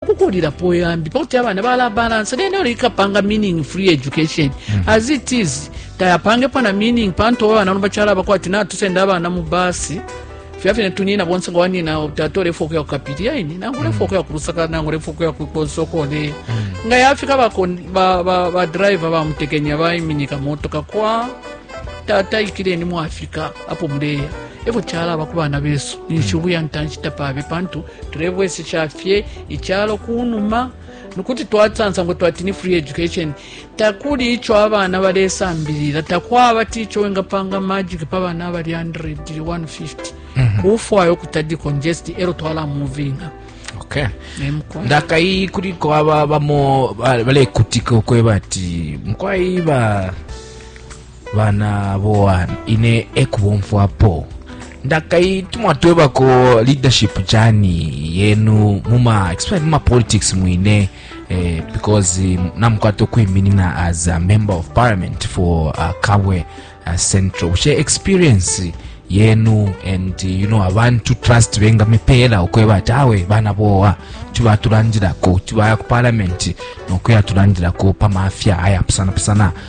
kukulilapo yambi pakuti abana balabalansa naye nalo ikapanga meaning free education mm -hmm. as it is tayapangepo na meaning pantu oba abana bachala bakwa ati natusenda abana mu basi fya fine tunina bonse nga wanina tata olefa okuya kukapiri yaini nangu olefa mm. okuya kulusaka nangu olefa okuya kukonsokone mm. nga yafika badriver bamutekenya baiminika motoka kwa tata ikireni mu afirika apo muleya evo kyalaba ku baana beeso ninshi obuya mm. ntanshi tapaabe pantu tulebwesesha fye icalo ku numa kuti twasansa ngo twati ni free education takuli ico abana balesambilila takwaba ti ico wengapanga magic pa bana abali 100 150 mhm. kufwaya ukuta decongest elo twala movinga okay. ndakai kuliko aba bamo balekutika ukweba ati mkwai ba bana boan ine ekubomfwapo ndakai tumwatwebako leadership chani yenu muma explain muma politics mwine eh, because um, namukwata okwiminina as a member of parliament for uh, kabwe uh, central bushe experience yenu and uh, you know abantu trust bengamipeera okweba ati awe bana bowa tuba tulandirako tubaya ku parliament nokuya tulandirako pamafya ayapusanapusana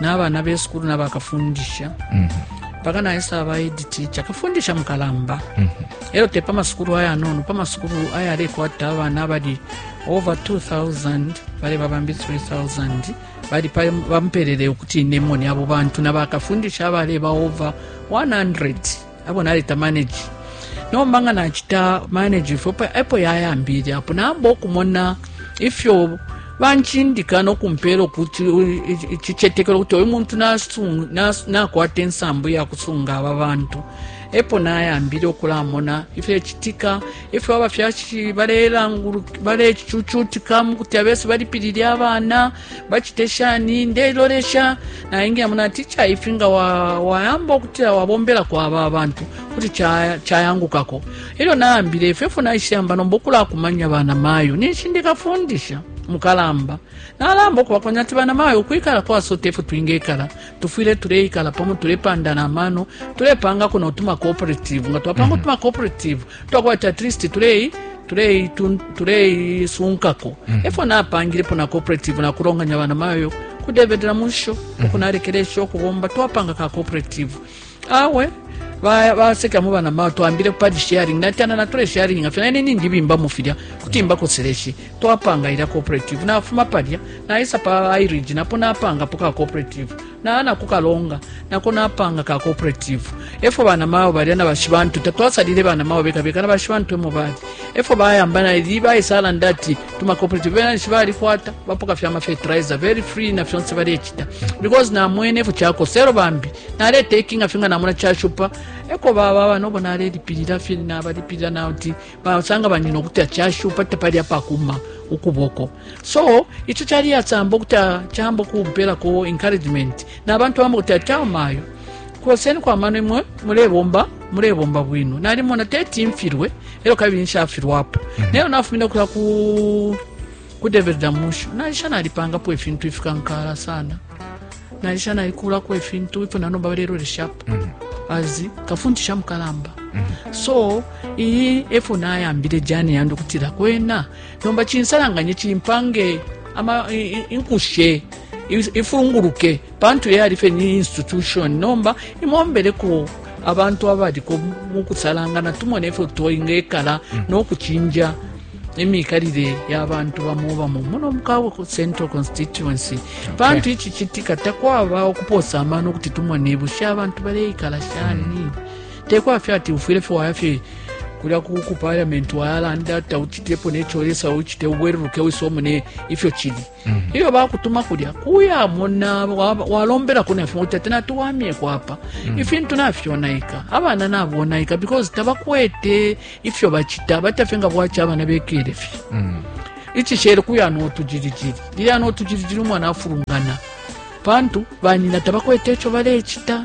nabana besukulu nabakafundisha mm -hmm. paka naisa abaidi ticha kafundisha mukalamba mm -hmm. elo te pamasukulu ayanono pamasukulu ayalekwata abana abali over 2000 bale babambi 3000 bali bamupelele ukuti nemoni abo bantu nabakafundisha abale ba over 100 abo naleta manage nomba nga nacita manage ifyo epo yayambile apo namba okumona ifyo banchindika nokumpela okuti icicetekelo kuti oyo muntu nakwata ensambu yakusunga aba bantu epo nayambile okulamona ifyecitika ifyo abafyashi balecucutika mukuti abesi balipilile abana bacite shani ndelolesha naingia muna ticha ifi nga wayamba okutila wabombelako aba abantu kuti chayangukako cha elyo naambile ifyo ifyo naishiyamba nomba okulakumanya bana mayo ninshi ndikafundisha mukalamba nalamba okubakonya ati bana mayo ukwikala kwasota ifyo twingekala tufwile tuleikala pamo tulepandana amano tulepangako notuma cooperative nga twapanga mm -hmm. tuma cooperative twakwati at least tulei tuleisunkako tule mm -hmm. efo napangilepo na cooperative nakulonganya bana mayo kudevedela musho mm -hmm. ukunalekelesha okubomba twapanga ka cooperative awe baseka mu bana mao twambile padi sharing natana natole sharing nga fyana nini ndibimba mu filya kuti mbakoseleshe twapanga ila cooperative nafuma palya naisa pa irige napo napanga po ka cooperative naana kukalonga nako napanga ka cooperative efo bana mao balya na bashi bantu tatwasalile bana mao beka beka na bashi bantu emo bali efo bayamba na ili bayisala ndati tuma cooperative bena nishi balikwata bapoka fyama fertilizer very free na fyonse balecita because namwene efo chakosero bambi naletekinga fye nga namona cashupa eko baba abana obo nalelipilila fye nabalipilila nauti basanga banyina ukuti acashupa tapali apakuma ukuboko so ico cali yasamba ukuti camba kumpelako encouragement nabantu bamba kuti atamayo koseni kwa mano imwe mulebomba mulebomba bwino nalimona teti mfilwe elo kabili nshafilwapo mm -hmm. nayo nafumina kuya ku ku David Damushu naisha nalipangapo ifintu ifikankala sana naisha naikulako ifintu ipo nanomba baleloleshapo mm -hmm. azi kafundisha mukalamba mm -hmm. so iyi efo nayambile jani yandi ukutila kwena nomba chinsalanganye chimpange ama inkushe ifunguluke pantu yali fye ni institution nomba imombeleko abantu abaliko mu kusalangana tumone ifyo toingekala mm. n'okucinja emikalire y'abantu bamu bamu muno mukawe ku central constituency pantu iki kitika takwaba okupoosa amaani okuti tumone bushe abantu baleikala shani mm. tekwafye ati ufwire fye wayafye kulya ku parliament wayalanda tauchitepo necholesawo uchite ubweruruke wisomune ifyo chili iyo bakutuma kulya kuyamona walombelako nafyo uti ati natuwamyeko apa mm. ifintu nafyonaika abana nabonaika because tabakwete ifyo bacita batafye nga bwaca abana bekele fye mm. icishele kuya notujirijiri liya notujirijiri umwana afulungana pantu banyina tabakwete ico balecita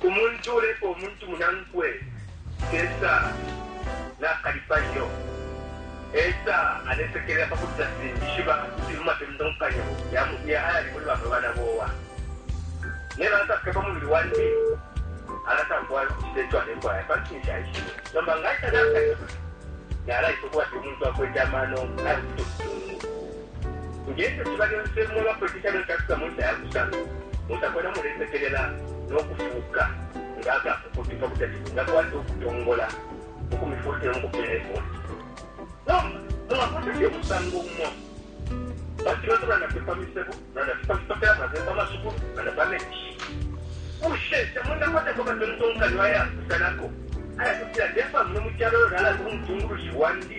Umuntu uuleepa umuntu munankwe teesa nakalipa iyo. Eesa alesekelela pa kuti nafilingishiba ifili mu matontonkanyo ya ayali muli bamwe bana bowa. Nelyo alasapika pa mubili wandi, alatamfwaya ukucita ico alefwaya pantu ninshi aishibe. Nomba nga aisa nakalipa, nalaisa ukubati umuntu akwete amano aya kucita ubusungu. Nge fyo ciba lyonse, mwe bakwete calo icafika mu nshita ya kusama, musa kwena mulesekelela no kufuuka nga akafukutu pa kuti ati mwingakwata ukutongola ukumifulukila mu kupeela ifunde. Nomba mwakwata fye umusango umo pa filoto, mulanda fye pa misebo, mulanda fye pa fipatala, mulanda fye pa masukulu, mulanda pa menshi. Bushe tamwingakwatako amatontonkanyo ayapusanako aya kutila, Ndeefwaya muno mu calo uyo nalanda umutungulushi wandi?